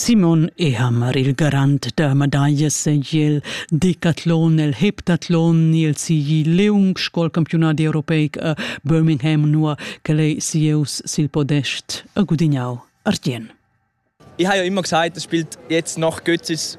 Simon Ehammer, il garant da medaglia segl decatlon el heptatlon ni el sigi leung scol campiunat europeic a Birmingham nua che ei sieus sil podest a gudignau Artien. Ich habe ja immer gesagt, das spielt jetzt noch Götzes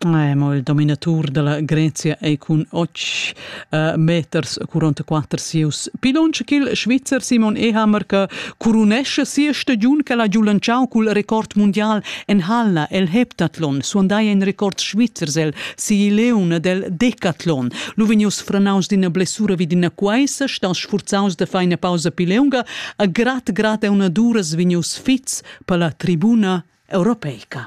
Eh, mo il dominatur della Grezia ei cun och uh, meters curont quater sieus pilons ch'il Svizzer Simon Ehammer che curunesce sia stagiun che l'ha giu lanciau cul record mundial en Halla el heptathlon suondai in record svizzers el Sileun del decathlon lu vegnius franaus d'ina blessura vid ina quaisa staus sfurzaus de feina pausa pileunga a grad grad e una duras vegnius fits per la tribuna europeica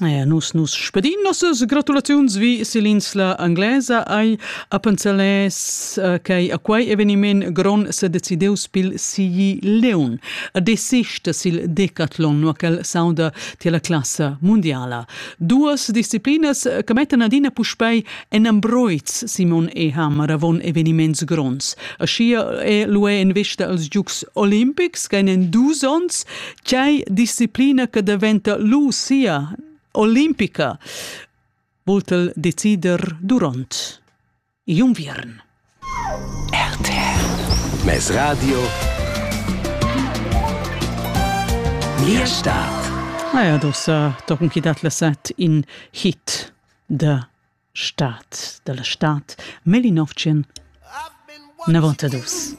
Ja, nus nus spedin nossas gratulaziuns vi sill'insla anglesa ai Appenzeles uh, che a quei eveniment gron se decideus pil sigi Leon a desista sil Decathlon no quel sauda tier la classa mundiala. Duas disciplinas che mettan adina puspei en ambroiz Simon e Hammer avon eveniments grons. A schia è l'UE in vista als Giugs Olimpics che in dus ons Tgei disciplina che daventa lu sia olimpica vultel decider duront igl unviern. RTL Mes Radio Mia Stadt Naja, dossa tochen chi dat la set in hit da Staat, dalla Staat, 1900 90 dus.